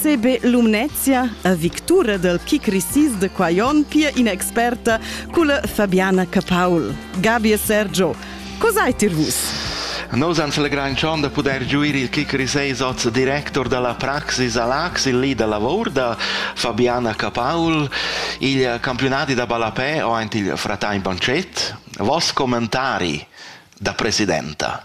CB Lumnezia a victura dal kick recess da quai onn pia in'experta culla Fabiana Capaul. Gabi e Sergio, cos'hai tir vus? Nus ans legrantschon da pudair giuir il kick recess oz director da la Praxis a Lax, il li da lavor da Fabiana Capaul. Il campiunadi da ballapè o aint il fratain panchet. Vos commentari da presidenta.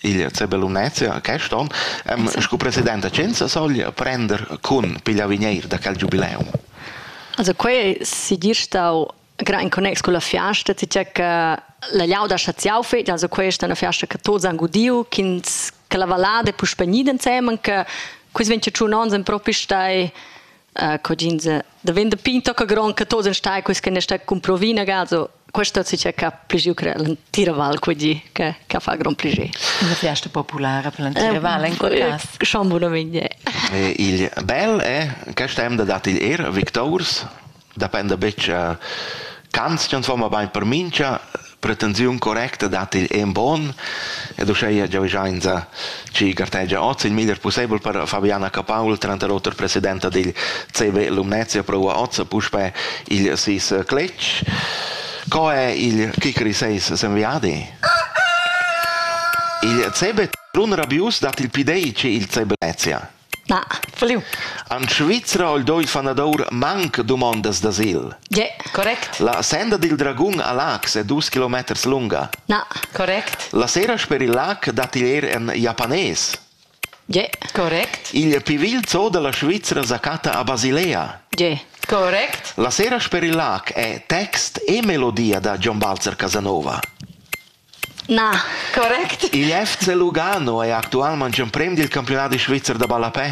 Il Zebel Unezia quest onn am scu president da Cenza soglia prender cun pigliavigneir da quel giubileum. Also quai sigir stau gran in connex con la fiasta, tgè che la Liauda Chaziau fet, also questa è una fiasta che tots han gudiu, ch'ins che la vallada è puspè gnida insemen, che quis ventg onns en propi stai uh, cogins daventa pin tocca gron che tosen stai quis che ne sta con provina gazo questo si c'è che più che tira val cogì che che fa gran più una fiesta popolare per tira val in quel caso schon buona miglia il bel è che stem da dat il er victors depende betg uh, Kants transforma bain per mincha pretensiun correcta dat igl en bon ed uscheia giavischainsa chi gartegia oz il miglier pussebel per Fabiana Capaul, tranter oter presidenta digl CV Lumnezia, proua oz puspe igl sis cletg. Co è il Kikri 6 semviadi? Il CB Trun Rabius dat il pidei ce il CB Lezia. En Svizra al doi fanadur manc dumondas d'asil. Ge, correct. La senda dil dragun a Laax è dus kilometers lunga. Na, correct. La sera sper il lac dat igl er en japanés. Ge, correct. Il pivil zoo dalla Svizra sa catta a Basilea. Ge, correct. La sera sper il lac è text e melodia da John Balzer Casanova. Na, correct. Il FC Lugano è actualmente emprem dil campiunadi svizzer da ballapè.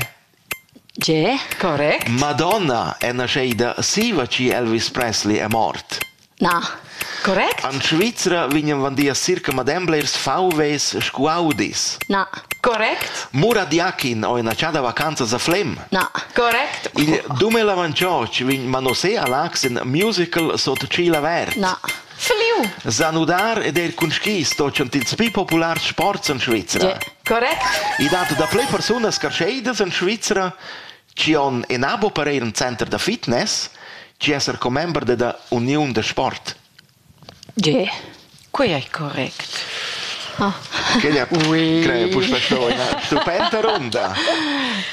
Tge? Correct. Madonna è naschida siva chi Elvis Presley è mort. Na, correct. An Svizra vignan vandia circa madem blers VWs scuaudis. Na, correct. Mura Diakin ho ina chada vacanzas a Flem. Na, correct. Il dumel avanciotg vegn manosè a l'accent musical sot Cila Vert. Na, Fliu! Zanudar ed eir cun skis stochan tils pii populars sports in Svizra. Correct. I dat daplè persunas carscheidas in Svizra chi on inabo per eir ün center da fitness chi esser commember della Uniun da sport. Ge, quai è correct. Ah. Quella crei puspei stau ina stupenta ronda.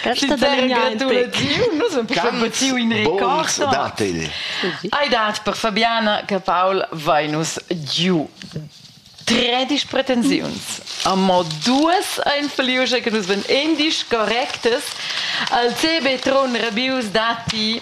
Questa delegnatziu in record Hai dat per Fabiana che Paul Vainus giu 13 pretensiuns. Amo duas ein feliusche che nus ven endisch correctes. Al CB Tron Rabius dati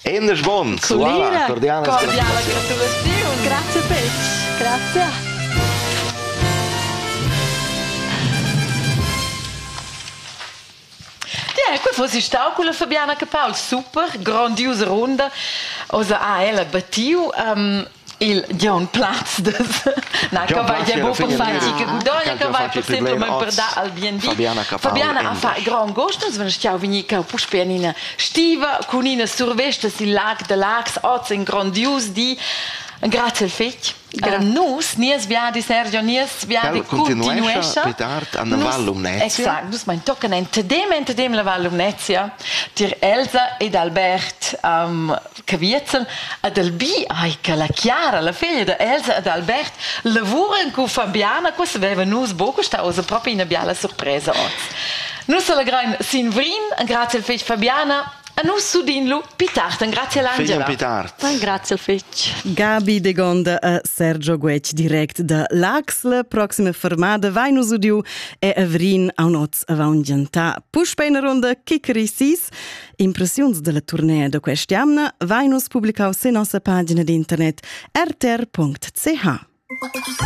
Endes Bond, voilà, cordiale gratulatzione. Grazie Pez, grazie. Eh, quei fosse stau con la Fabiana Capal, super, grandiose runda. Osa ha ella battiu. Um, il Gion Plazdes na cavai è buca fatg che udoglia cavai possibel men per dar al bien di Fabiana ha fa grand gost uns wenn schau vegni cau puspe in ina stiva cun ina survesta sil lag de Lax oz in grandius di Grazie fetg. Gra nus, nies viadi, Sergio, nies viadi continuescha. Più tard an la Val Lumnezia. Exact, nus mein tocken entedem, entedem la Val Lumnezia, tier Elsa ed Albert um, Caviezel ed el bi ai che la Chiara, la figlia da Elsa ed Albert lavuran con Fabiana, questa veva nus buca sta oz propi ina biala surpresa oz. Nus allegrain sin Vrin, grazie al figl Fabiana, a nus sudin lu Pitart, grazie all'Angela. Pitart. Grazie al figl. Gabi de Gonda e Sergio Guec direct da l'Axle. Proxima fermada vai nus udiu e a Vrin aunot avant gentà. Puspei una ronda Kikrisis. Impressiuns dalla turnea da quest'jamna vein nus publicau sin nossa pagina d'internet rtr.ch.